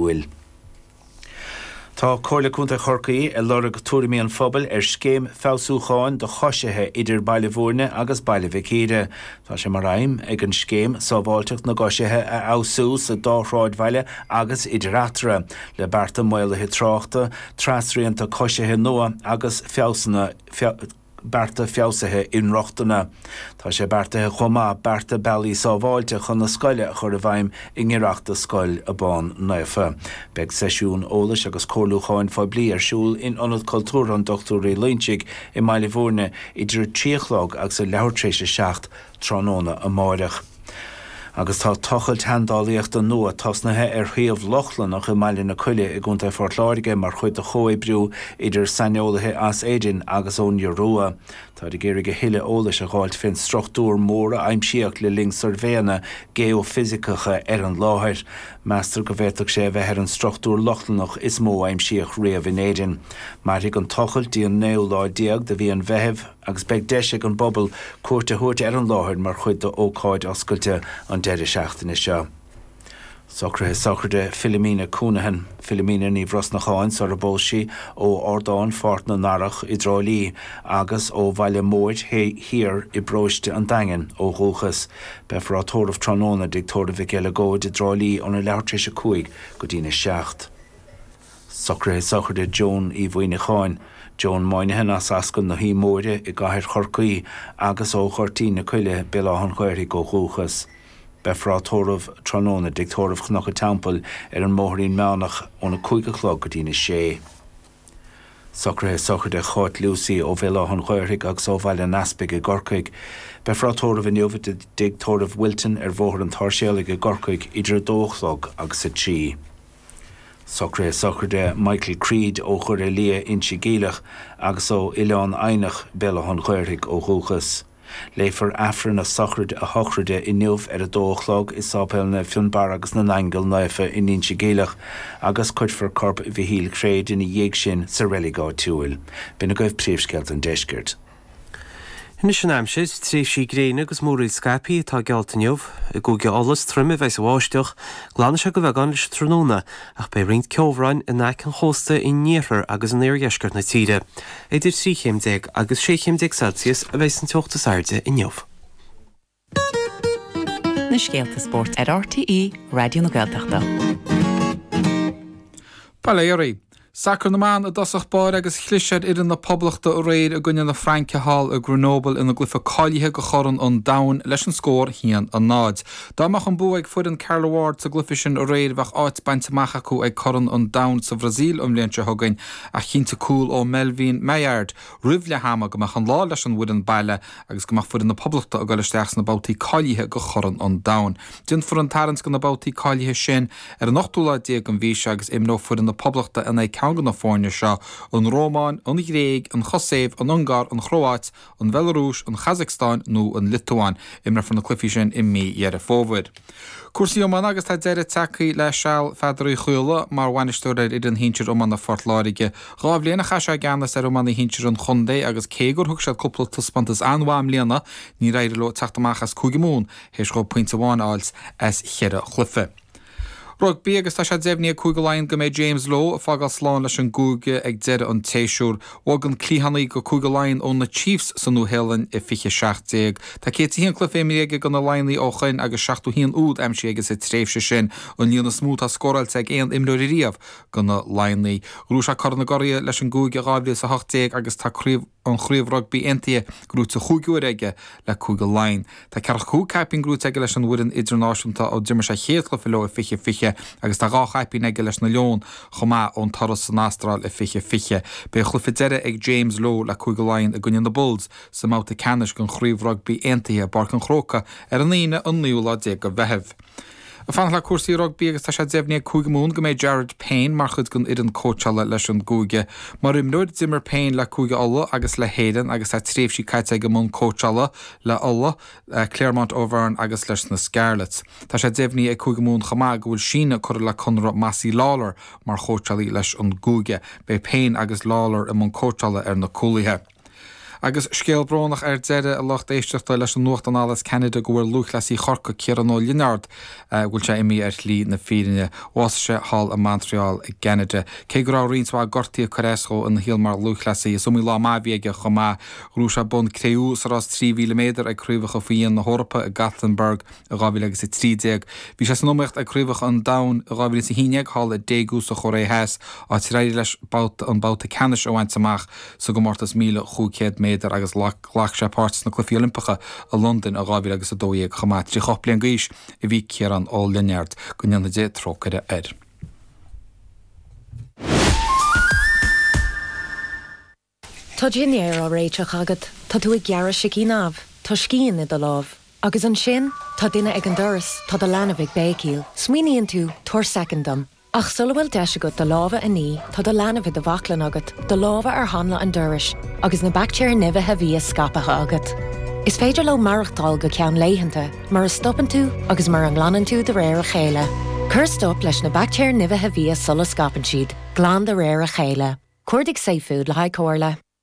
Iúil. Tá Comhairle Contae Chorcaí ag lorg tuairimí an phobail ar scéim feabhsúcháin do choisithe idir Baile Mhúirne agus Baile Mhic Íre. Tá sé mar aidhm ag an scéim sábháilteacht na gcoisithe a fheabhsú sa dá shráidbhaile agus idir eatarthu, le bearta maolaithe tráchta, trasrianta coisithe nua agus feabhsanna bearta feabhsaithe inrochtana. Tá sé beartaithe chomh maith bearta bealaí sábháilte chun na scoile a chur i bhfeidhm i ngiorracht do Scoil Abán Naofa Beidh seisiún eolais agus comhairliúcháin phoiblí ar siúl in Ionad Cultúrtha an Dochtúir Uí Loingsigh i mBaile Mhúirne idir a trí a chlog agus a leathuair tréis a seacht tráthnóna amáireach agus tá tochailt sheandálaíochta nua tosnaithe ar shuíomh Lochlannach i mBaile na Coille i gContae Phort Láirge mar chuid de chomhoibriú idir saineolaithe as Éirinn agus ón Iorua. Táid ag iarraidh a thuilleadh eolais a dh'fháilt fén struchtúr mór a aimsíodh le linn suirbhéanna geoifisiceacha ar an láthair. Meastar go bhféadfadh sé a bheith ar an struchtúr Lochlannach is mó a aimsíodh riamh in Éirinn. Mairfidh an tochailt dtí an naoú lá déag de mhí an Mheithimh. agus beidh deis ag an bpobal cuairt a thabhairt ar an láthair mar chuid d'ócáid oscailte an deireadh seachtaine seo. Socruithe Sochraide Philomena Counihan, Philomena Ní Bhrosnacháin, sarar phós sí, ó Ardán Pháirc na nDarach i dTrá Lí agus ó Bhaile Móir Thiar i bparóiste an Daingin ó dhúchas. Beifear á tórramh tráthnóna i dTigh Tórraimh Mhic Uileagóid i dTrá Lí óna leathuair tar éis a cúig go dtína seacht. Socruithe sochraide Joan Uí Mhuíneacháin, Joan Moynihan as Ascaill na hUí Móire i gCathair Chorcaí agus ó Ghoirtín na Coille, Béal Átha'n Ghaorthaidh ó dhúchas. Beifear á tórramh tráthnóna i dTigh Tórraimh Chnoc a' Teampaill ar an mBóithrín Meánach ón 5 a chlog go dtí'n 6. Socruithe sochraide Cháit Lucey ó Bhéal Átha'n Ghaorthaidh agus ó Bhaile an Easpaig i gCorcaigh. Beifear á tórramh inniu i dTigh Tórraimh Wilton ar Bhóthar an tSáirséalaigh i gCorcaigh idir 2 a chlog agus 3. Socruithe sochraide Michael Creed ó Dhoire Liath, Inse Geimhleach, agus ó Oileán Eidhneach, Béal Átha an Ghaorthaidh, ó dhúchas. Léifear Aifreann a sochraide, a shochraide inniu ar a dó a chlog i Sáipéal Naomh Fionnbarra agus na nAingeal Naofa in Inse Geimhleach agus cuirfear corp Mhichíl Chreid ina dhiaidh sin sa reilig áitiúil. B'in agaibh príomhscéalta an deiscirt. Anois an aimsir, tréimhsí gréine agus múraíl scaipthe atá geallta inniu. I gCúige Uladh is troime a bheas an bháisteach. Glanfaidh sé de bheagán leis an tráthnóna ach beidh roinnt ceobhráin in aice an chósta in iarthar agus in iardheisceart na tíre. Idir 13 chéim agus 16 chéim Celsius a bheas an teocht is airde inniu. Na scéalta spóirt ar RTÉ Raidió na Gaeltachta. Bail ó Dhia oraibh. Sacar na mban i dtosach báire agus chlis ar fhoireann na Poblachta aréir i gcoinne na Fraince thall i Grenoble ina gcloife cáilithe go Chorn an Domhain leis an scór 1-0. Dá mbeadh an bua ag foireann Carla Ward sa gcluife sin aréir bheadh áit bainte amach acu ag Corn an Domhain sa Bhrasaíl an bhliain seo chugainn ach chinntigh cúl ó Melvine Malard, roimh leath ama go mbeadh an lá leis an bhfoireann baile agus go mbeadh foireann na Poblachta ag dul isteach sna babhtaí cáilithe go Chorn an Domhain. Déanfar an tarraingt go na babhtaí cáilithe sin ar an ochtú lá déag den mhí seo agus imreoidh foireann na Poblachta in aghaidh ceann de na foirne seo, an Rómáin, an Ghréig, an Chosaiv, an Ungáir, an Chróáit, an Bhealarúis, an Chasacstáin nó an Liotuáin. Imreofar na cluichí sin i mí Dheireadh Fómhair. Cúrsaí iomána agus tá deireadh tagthaí le seal Pheadar Uí Chaola mar bhainisteoir ar fhoireann shinsir iomána Phort Láirge. Dhá bhliain a chaith sé i gceannas ar iománaí shinsir an chontae agus cé gur thug siad cúpla taispeántas an-mhaith i mbliana níor éirigh leo teacht amach as Cúige Mumhan théis dhóibh pointe amháin a fháilt as cheithre chluiche. Rugbaí agus tá sé deimhnithe ag Cúige Laighean go mbeidh James Lowe ag fágáil slán leis an gcúige ag deireadh an tséasúir. Bhog an cliathánaí go Cúige Laighean ó na Chiefs sa Nua Shéalainn i 2017. Tá 101 cluiche imrithe aige do na Laighnigh ó shoin agus 71 úd aimsithe aige sa tréimhse sin, an líon is mó tá scóráilte ag aon imreoir ariamh do na Laighnigh. Ghnóthaigh sé Corn na gCuradh leis an gCúige i 2018 agus tá craobh an Chraobh Rugbaí Aontaithe gnóite chúig uaire aige le Cúige Laighean. Tá 45 caipín gnóite aige leis an bhfoireann idirnáisiúnta ó d'imir sé a chéad chluiche leo i 2020 agus tá dhá chaipín aige leis na Leoin chomh maith ón turas san Astráil i 2020. Beidh a chluiche deiridh ag James Lowe le Cúige Laighean i gcoinne na Bulls sa mbabhta ceannais den Chraobh Rugbaí Aontaithe i bPáirc an Chrócaigh ar an Aoine an naoú lá déag de Mheitheamh. Fanacht le cúrsaí rugbaí agus tá sé deimhnithe ag Cúige Mumhan go mbeidh Jared Payne mar chuid den fhoireann cóitseála leis an gcúige. Mar imreoir, d'imir Payne le Cúige Uladh agus le hÉirinn agus tá tréimhsí caite aige i mbun cóitseála le Uladh, le Clermont Auvergne agus leis na Scarlets. Tá sé deimhnithe ag Cúige Mumhan chomh maith go bhfuil síneadh curtha le conradh Mossy Lawler mar chóitseálaí leis an gcúige. Beidh Payne agus Lawler i mbun cóitseála ar na cúlaithe. Agus scéal brónach ar deireadh, a lucht éisteachta, leis an nuacht anall as Ceanada go bhfuil lúthchleasaí Chorcaí, Ciarán Ó Lionáird, go bhfuil sé imithe ar shlí na fírinne. Bhásaigh sé thall i Montreal i gCeanada. Cé go raibh roinnt mhaith gortaí ag cur as dhó ina shaol mar lúthchleasaí, is iomaí lá maith a bhí aige chomh maith. Ghnóthaigh sé bonn cré-umha sa rás 3,000 méadar ag Craobhacha Faoi Dhíon na hEorpa i Gothenburg i 2013. Bhí sé san iomaíocht ag Craobhacha an Domhain i 2011 thall i Daegu sa Chóiré Theas, áit ar éirigh leis an babhta ceannais a bhaint amach. sa gcomórtas 1500 méadar agus ghlac sé páirt sna Cluichí Oilimpeacha i Londain i 2000 agus a 12 chomh maith. 38 mbliana d'aois a bhí Ciarán Ó Lionaird. Go ndéanfaidh Dia trócaire air. Tá dinnéar á réiteach agat, tá tú ag gearradh sicín amh, tá scian i do lámh. Agus ansin, tá duine ag an doras, tá do leanbh ag béicíl. Smaoiníonn tú, 'Tabhair soicind dom. Ach sula bhfuil deis agat do lámha a ní, tá do leanbh i do bhaclainn agat, do lámha ar hanla an dorais, agus na baictéir nimhithe bhia scaipthe agat. Is féidir leo maireachtáil go ceann laethanta, mura stopann tú agus mura nglanann tú de réir a chéile. Cuir stop leis na baictéir nimhithe bhia sula scaipeann siad, glan de réir a chéile. Cuardaigh safefood le haghaidh comhairle.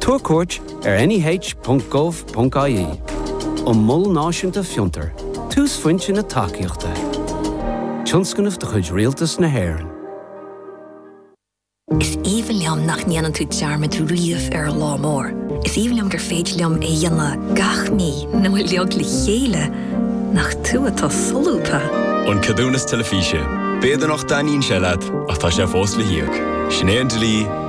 Tabhair cuairt ar neh.gov.ie an Mol Náisiúnta Fiontar, túsphointe na tacaíochta. Tionscnamh de chuid Rialtas na hÉireann. Is aoibhinn liom nach ndéanann tú dearmad riamh ar an lá mór. Is aoibhinn liom gur féidir liom é a dhéanamh gach mí nó uilig le chéile, nach tú atá solúbtha? An Ceadúnas Teilifíse. B'fhéidir nach dtaitníonn sé leat, ach tá sé fós le híoc. Sin é an dlí.